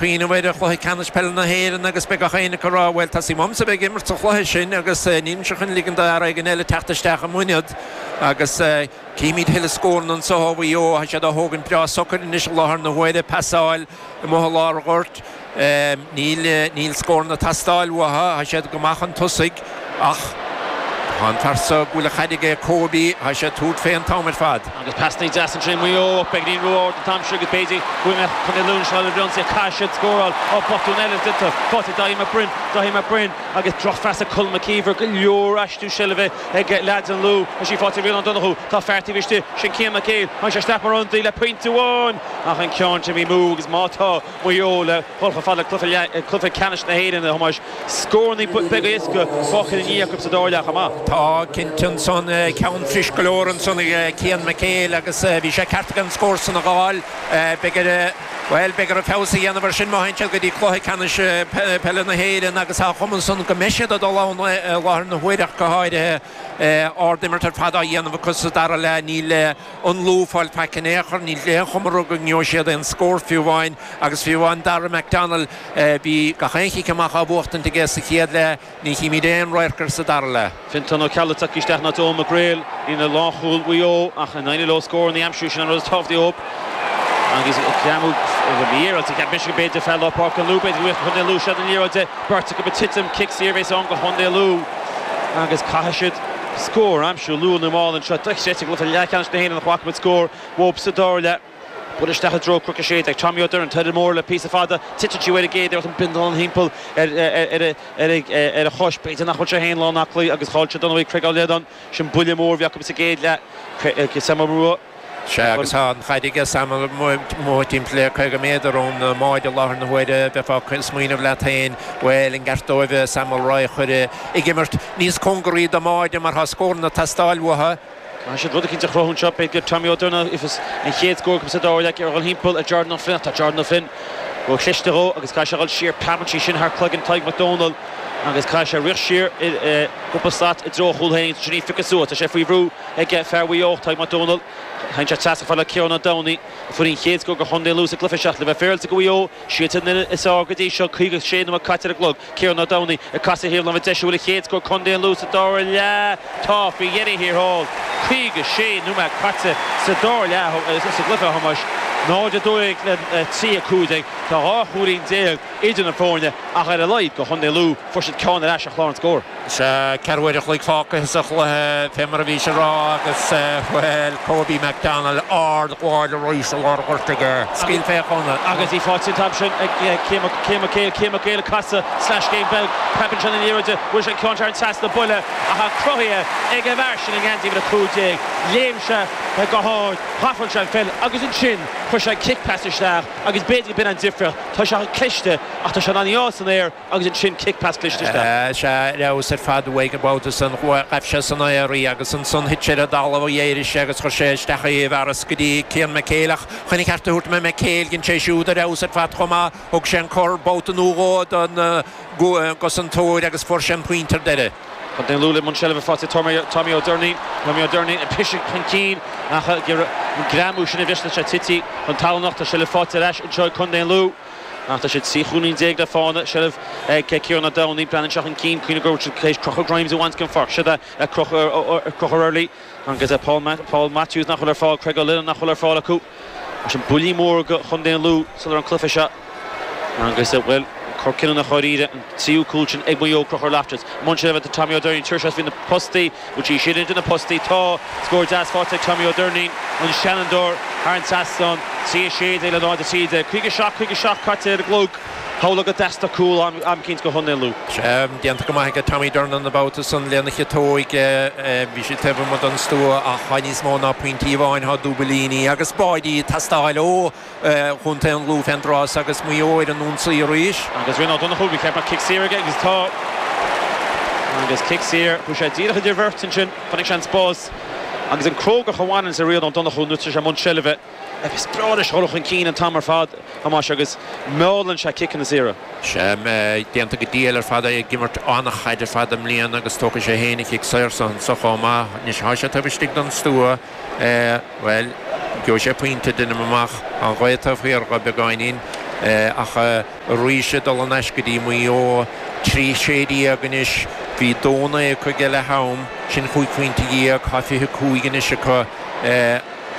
Cuimhním ar Chluiche Ceannais Peile na hÉireann agus beidh gach éinne ag rá, bhuel, teastaíonn uaimse a bheith ag imirt sa chluiche sin agus nílimse chun ligint d'fhear éigin eile teacht isteach i m'ionad. Agus cífimid a thuilleadh scóranna anseo ó Mhaigh Eo, tá siad á thógaint breá socair anois i láthair na huaire, pasáil amuigh i lár an ghoirt, níl scóranna ag teastáil uathu, tá siad go maith chun tosaigh. Ach tá an fear so go bhfuil an chaid aige, Kobe, tá sé ag tabhairt fé an t-am ar fad. Agus pasanna deasa ansin Maigh Eo up ag líon ró-ard an t-am sin agus b'fhéidir go bhfuil Contae Lú anseo le Bhreoncé caithfidh siad scóráil ó botún eile déanta faighte ag Daithí Mac Broin Daithí Mac Broin agus drochphas ag Colm Mac Íomhair go leor aistriú seilbhe ag leaids an Lú is í faighte ag Ryan Ó Donnchadha tá fear taobh istigh sin Cian Mac Éil tháinig sé isteach mar ionadaí le pointe amháin ach an ceann sin imithe amú agus má tá Maigh Eo le dhul chomh fada le cluiche ceannais na hÉireann a Thomáis. Scóranna, pointí beaga éasca fágtha ina ndiaidh acu sa dara leath chomh maith. Tá cinnte ansan ceann fuirist go leor ansan ag Cian McHale agus bhí sé ceart aige an scór san a dh'fháil. Beidh air, bhuel, beidh air feabhas a dhéanamh ar sin má théann siad go dtí cluiche ceannais peile na hÉireann agus tá an chuma ansan go mbeidh siad ag dul ann i láthair na huaire ach go háirithe. Ard imirt ar fad á dhéanamh acu sa dara leath. Níl. an Lú ag fáil faic in aon chor, níl aon chuma orthu go ngeobhaidh siad aon scór fiú amháin agus fiú amháin Dara McDonnell, bhí gach aon chic amach á bhuachtaint aige sa chéad leath, ní chímid aon radharc air sa dara leath. Fenton Ó Ceallaigh ag teacht isteach in áit Eoghan Mac Gréil, i líne lánchúil Mhaigh Eo ach an éireoidh leo scór a aimsiú sin an rud is tábhachtaí ó agus ag greamú a bhfuil mí ar fhaitíos ag Michigan b'fhéidir fear lár páirce an Lú b'fhéidir go bhféadfadh Contae an Lú seilbh an liathróid de, beirt acu ag titim, cic saor a bheidh ann go Contae an Lú agus caithfidh siad. scór a aimsiú luath nó mall anseo. Dochreidte go bhfuiltear i leathcheannais na hÉireann nach bhfaca muid scór uathub sa dara leath. Buailte isteach i dtreo Cnoc 16 ag Tommy Ó Doirnín, Toireadh Mór le píosa fada, titeann sí uaidh ar an gcéad iarracht, an bindealán thimpeall ar a chois. B'fhéidir nach bhfuil sé féin lán aclaí agus chaill siad dar ndóigh Craig Ó Leannáin. Sin buille mór a bhí acu sa gcéad leath. Sea, agus tá an chaid ag Sam amuigh timpeall le caoga méadar ón mbáide i láthair na huaire. Bheifeá ag smaoineamh leat féin, bhuel, an gceart dóibh Sam Mulroy a chur ag imirt níos cóngaraí don mbáide mar tá scóranna ag teastáil uathu. Caithfidh siad rud eicínt a chruthú anseo. B'fhéidir go bhfaighidh Tommy Ó Doirnín an chéad scór acu sa dara leath ag dul thimpeall ar Jordan Ó Floinn, ach tá Jordan Ó Floinn ró-chliste dhó agus caithfidh sé a dhul siar, preabann sé sin thar cloigeann Tadhg Mac Domhnaill agus caithfidh sé rith siar cúpla slat i dtreo a chúil féin agus ansin é a phiocadh suas. Tá sé faoi bhrú. ag fear Mhaigh Eo, Tadhg Mac Domhnaill. Téann sé trasna chomh fada le Ciarán Ó Domhnaigh, a fuair an chéad scór do Chontae an Lú sa gcluiche seo ach le bheith féaráilte go Mhaigh Eo, siadsan an fhoireann is fearr go dtí seo, 56 nóiméad caite ar an gclog. Ciarán Ó Domhnaigh ag casadh ar thaobh na láimhe deise, an bhfuil an chéad scór ag Contae an Lú sa dara leath. Tá faoi dheireadh thiar thall. 56 nóiméad caite sa dara leath sa gcluiche, a Thomáis. 0, 12 le 3, 15. Tá dhá chúilín déag idir na foirne, ach ar a laghad do Chontae Lú, fuair siad ceann ar ais ar chlár na scór. Sea, ceathrú uair a chloig fágtha sa chluiche, fé mar a bhís a rá, agus, bhuel, Kobe McDonald, árd-ghabháil arís i lár goirt aige. Scaoil sé chun cinn. Agus í fáighte an t-am sin ag Cian Mac Éil, Cian Mac Éil ag casadh slais Shane Belk, crochann sé in airde, bhuail sé an ceann thar an trasnán, buille atá cruthaithe ag an bhfear sin i ngeansaí uimhir a cúig déag. Léim sé go hárd, shealbhaigh sé an pheil, agus ansin chuir sé an cic pas isteach, agus b'fhéidir go b'in an difriocht. Tá sé chomh cliste, ach tá sé in ann í fháil san aer, Agus ansin cic pas cliste isteach. Is ea, ar fheabhas ar fad uaidh an babhta san. Ghabh sé san aer í agus ansan thit sé ar an dtalamh d'éirigh sé agus chuir sé isteach í i bhfearas go dtí Cian McHale. Ach chun a cheart a thabhairt do Mhac Éil, dhein sé siúd ar fheabhas ar fad chomh maith. Thug sé an cor babhta nó dhó don gcosantóir agus fuair sé an pointe ar deireadh. Contae an Lú i mbun seilbhe, ar fáil ag Tommy Ó Doirnín. Tommy Ó Doirnín ag briseadh chun cinn ach an greamú sin a bhris leis ag titim chun talún ach. Tá sé le fáilt ar ais anseo ag Contae an Lú. Ach tá siad 13 chúilín le fáil i seilbh ag Ciarán Ó Domhnaigh. Breathnaíonn sé chun cinn Cuimhnigh go raibh siad tar éis Conchúr Grimes a bhaint den pháirc. Siod é Conchúr Early agus Paul Matthews nach bhfuil ar fáil. Craig Ó Lionnáin nach bhfuil ar fáil acu. Mar sin buillí móra do Chontae an Lú sular an cluiche seo agus bhuel cor cinniúnach dháiríre. An tríú cúl sin ag Maigh Eo. Conchúr Loftus. I mbun seilbhe tá Tommy Ó Doirnín. An turas seo faoi na postaí. Go dtí sin, idir na postaí, tá scór deas faighte ag Tommy Ó Doirnín, an seanfhondúir, thar an trasnán, 3:16 le 0:13. 57, 57 caite ar an gclog, shamhlófá go dteastódh cúl am eicínt ó Chontae an Lú. Sea, déanta go maith ag Tommy Durnin an babhta san lena chiotóg. Bhí sé taobh amuigh den stua ach tá níos mó ná pointí amháin, tá dúbailíní agus báidí ag teastáil ó. Chontae an Lú fén dtráth so agus Maigh Eo ar an ionsaí arís. Agus Rian Ó Donnchú, bhí cead mar cic saor aige agus tá agus cic saor, chuaigh sé díreach idir bheirt ansin, chonaic sé an spás agus an chrógacht a bhaineann le Rian Ó Donnchú nuair atá sé i mbun seilbhe, is breá leis dhul chun cinn an t-am ar fad, Thomáis, agus meallann sé ciceanna saora. Sea, déanta go diail ar fad, é ag imirt an-chaid ar fad i mbliana agus tógfaidh sé féin an cic saor san anseo chomh maith. Anois, tá sé taobh istigh den stua. Bhuel, gheobhaidh sé pointe, deinim amach. An ghaoth taobh thiar dhó beagáinín, ach arís ag dul in aisce go dtí Maigh Eo. Trí sé dhéag anois. Bhí dó naoi acu ag leath am, sin cúig phointe dhéag, tá fiche cúig anois acu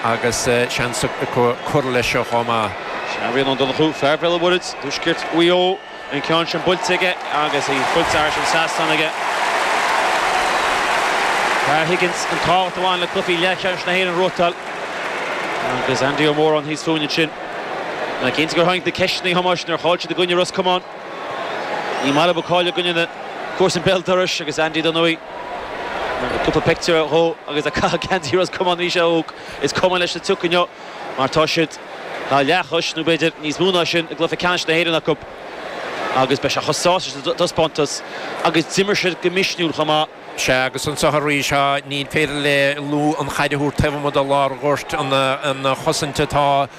agus seans acu cur leis seo chomh maith. Sea, Rian Ó Donnchú, fear Bhéal an Mhuirthead, i dtuaisceart Mhaigh Eo. An ceann sin buailte aige agus í buailte thar an trasnán aige. Dar Higgins an tábhacht a bhain le cluichí leathcheannais na hÉireann a thruaiteáil agus Andy Ó Móráin thíos fúinn ansin. Is cinnte gur tháinig na ceisteanna Thomáis nuair a chaill siad i gcoinne Ros Comáin. Ní maith le Maigh Eo cailleadh i gcoinne na comharsan béal dorais agus Andy dar ndóigh. Cúpla pictiúr dhó agus leath Chontae Ros Comáin arís a óg, is cuma leis sa tsioc inniu. mar tá siad leathchos, nó b'fhéidir níos mó ná sin, i gcluiche ceannais na hÉireann acu agus beidh sé chomh sásta sa taispeántas agus d'imir siad go misniúil chomh maith. Sea, agus anseo arís, ní féidir le Lú an chaid a thabhairt taobh amuigh de lár ghoirt. Ana-chosaint atá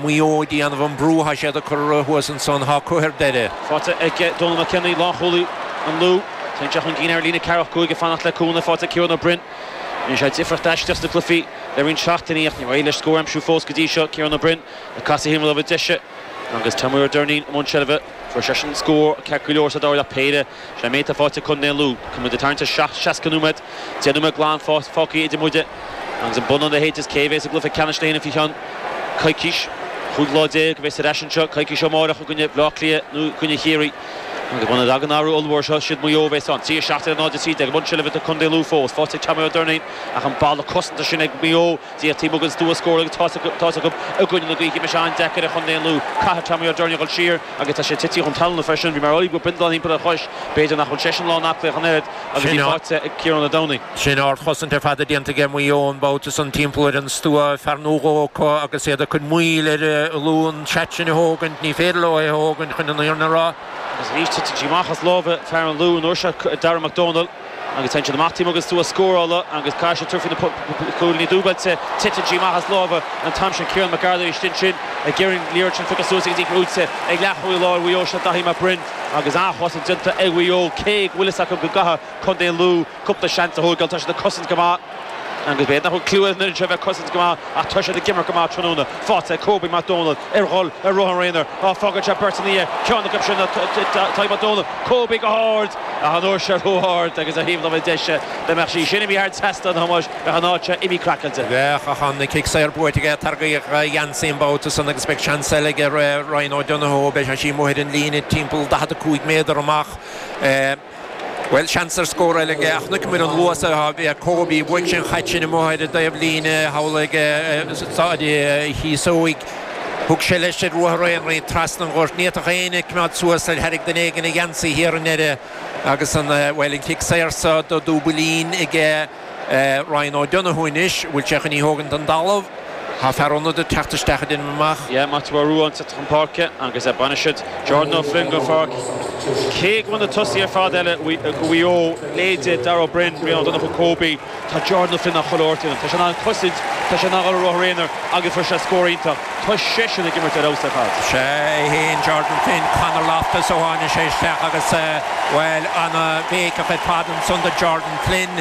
Maigh Eo ag déanamh an brú atá siad ag cur orthu thuas ansan, tá Cuffe ar deireadh. Faighte ag Dónal McKenny, lánchúlaí an Lú. Téann sé chun cinn ar líne ceathracha cúig ag fanacht le cúnamh. Faighte ag Ciarán Ó Broin. Rinne sé difríocht aisteach sna cluichí le roinnt seachtainí ach níor éirigh leis scór a aimsiú fós go dtí seo, Ciarán Ó Broin ag casadh ar thaobh na láimhe deise agus Tommy Ó Doirnín i mbun seilbhe. Fuair seisean scór ceart go leor sa dara leath péire. Sin é an méid faighte ag Co. Lú. Agus muid ag tarraingt ar 60 nóiméad, 10 nóiméad glan fágtha idir muide agus an bonnán leithéid is cé a bheas i gcluiche ceannais na hÉireann faoi cheann coicís. 15 lá a bheas ar ais anseo, coicís ó amárach, i gcoinne Bhleá Cliath nó i gcoinne Chiarraí. Agus muna dtagann athrú ollmhór seo, siad Maigh Eo a bheas ann. 3, 17 0 13, i mbun seilbhe do Contae Lú fós. Faighte ag Tommy Ó Doirnín ach an balla cosanta sin ag Maigh Eo díreach taobh amuigh den stua scór agus tá's acu i gcoinne na gaoithe beidh sé an-deacair ar Chontae an Lú. Caithfidh Tommy Ó Doirnín a dhul siar agus tá sé tití chun talúna freisin. Bhí mé ar Óigfhir bindealán thimpeall ar a chois. B'fhéidir nach bhfuil seisean lán aclaí ach an oiread. agus í faighte ag Ciarán Ó Domhnaill. Sin ardchosaint ar fad déanta aige Maigh Eo an babhta san timpeall ar an stua, fear nó dhó acu agus iad ag cur moill ar an Lú an seat sin a thógaint, ní féidir leo é a thógaint chun an fhírinne a rá. Agus arís titeann sí amach as lámha fear an Lú, an uair seo Darragh Mac Dónaill, agus téann siad amach taobh amuigh den stua scórála agus caithfidh siad tabhairt faoi na cúilíní dúbailte, titeann sí amach as lámha an t-am sin Ciarán Mac Ardghail arís ansin ag iarraidh liathróid sin a phiocadh suas agus í buaite ag leathchúlaí láir Mhaigh Eo seo Daithí Mac Briain. agus an-chosaint déanta ag Maigh Eo, cé go bhfuil fhios acu go gcaithfidh contae Lú cúpla seans a thógáil, tá siad ag cosaint go maith agus b'fhéidir nach bhfuil cliú ar an fhoireann seo bheith ag cosaint go maith ach tá siad ag imirt go maith tráthnóna, faighte ag Kobe Mac Dónaill ag goil ar ruathar aonair, fágann sé beirt ina dhiaidh, ceann acu sin ná Tadhg Mac Dónaill, Kobe go hard ach an uair seo ró-ard agus ar thaobh láimhe deise dá mbeadh sí sin imithe thar trasnán a Thomáis. Bheadh an áit seo imithe craiceáilte. Bheadh ach an cic saor buaite aige. Tarraingíodh a gheansaí an babhta san agus beidh seans eile aige Ryan O'Donoghue. Beidh sé amuigh ar an líne timpeall 45 méadar amach. Bhuel, seans ar scór eile aige ach chonaiceamar an luas a bhí ag Kobe. Bhuaigh sé an chaid sin amuigh ar an dtaobh líne, thall ag Seastán Chíosóig. Thug sé leis ar ruathar aonair trasna an ghoirt. Ní fhéadfadh éinne a coimeád suas air. Tharraing duine éigin a gheansaí thiar i ndeireadh agus an, bhuel, an cic saor so do Dúbailín aige. Ryan O'Donoghue anois, an bhfuil sé chun í thógaint don dtalamh? Thá fear ionaid ag teacht isteach a deinim amach. Yeah, Maitiú Ó Ruadháin sa chun páirce agus baineann siad Jordan Ó Floinn den pháirc. Cé go bhfuil na tosaithe ar fad eile ag Maigh Eo, leithéidí Darragh Ó Beirn, Ryan O'Donoghue, Kobe, tá Jordan Ó Floinn á chur ort ionam. Tá sé in ann cosaint, tá sé in ann dhul ar ruathar aonair agus fuair sé scór iontach. Tá seisean ag imirt ar fheabhas ar fad. Sea, é fhéin, Jordan Flynn, Conor Loftus ó tháinig sé isteach agus, bhuel, an-bhéiceach ar fad ansan do Jordan. Flynn,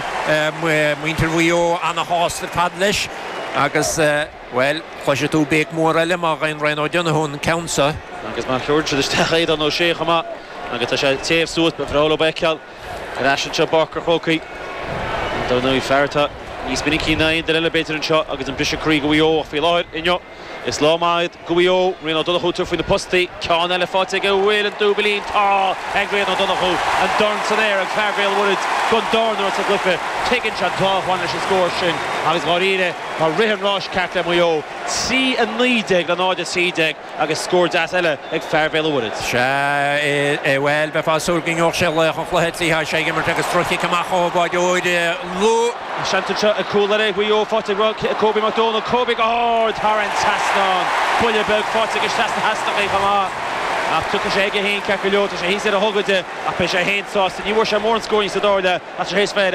muintir Mhaigh Eo ana-shásta ar fad leis agus, bhuel, cloisfidh tú béic mhór eile má ghabhann Ryan O'Donoghue an ceann seo. Agus má thuill siad isteach Aodhán Ó Sé chomh maith agus tá sé ag téamh suas, ba bhreá leo é a fheiceáil ar ais anseo i bPáirc an Chrócaigh. Ar ndóigh, fear atá níos minicí ná aon duine eile b'fhéidir anseo agus an briseadh croí do Mhaigh Eo, ach faoi láthair, inniu, Is lá maith é do Mhaigh Eo. Rian Ó Donnchú thar faoi na postaí. Ceann eile faighte ag a bhfuil an dúbailín. Tá ag Rian Ó Donnchú. An dorn san aer ag fear Bhéal Mhuirid gan dorn uaidh sa gcluiche. Tuigeann sé an tábhacht a bhain leis an scór sin agus dháiríre tá rith an ráis ceart le Maigh Eo, 3 19 le 0 13 agus scór deas eile ag fear Bhéal Mhuirid. Sea, bhuel, bheifeá súil go ngeobhadh sé laoch an chluiche, 3 6 ag imirt agus droch-chic amach ó bháireoir Lú. An seans anseo ag cúl eile Mhaigh Eo faighte ag Cobie Mac Dónaill. Cobie go hard thar an trasnán. Buille beag faighte aige isteach sna heasnachaí chomh maith. Ach tiocfaidh sé aige féin ceart go leor. Tá sé thíos ar a ghogaide ach beidh sé féin sásta. Ní bhfuair sé mórán scóiríní sa dara leath ach tá sé théis bheith ar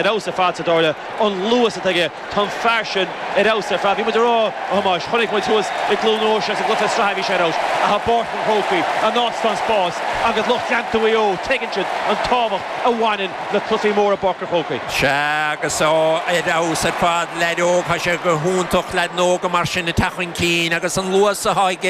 fheabhas ar fad sa dara leath. An luas atá aige. Tá an fear sin ar fheabhas ar fad. Bhí muid ag rá, a Thomáis, chonaic muid thuas i gCluain Eois i gcluiche sraithe bhí sé ar fheabhas, ach i bPáirc an Chrócaigh, an áit atá an spás, agus lucht leanta Mhaigh Eo, tuigeann siad an tábhacht a bhaineann le cluichí móra i bPáirc an Chrócaigh. Sea, agus é ar fheabhas ar fad. Leaid óg, tá sé go hiontach leaids óga mar sin a teacht chun cinn agus an luas atá aige.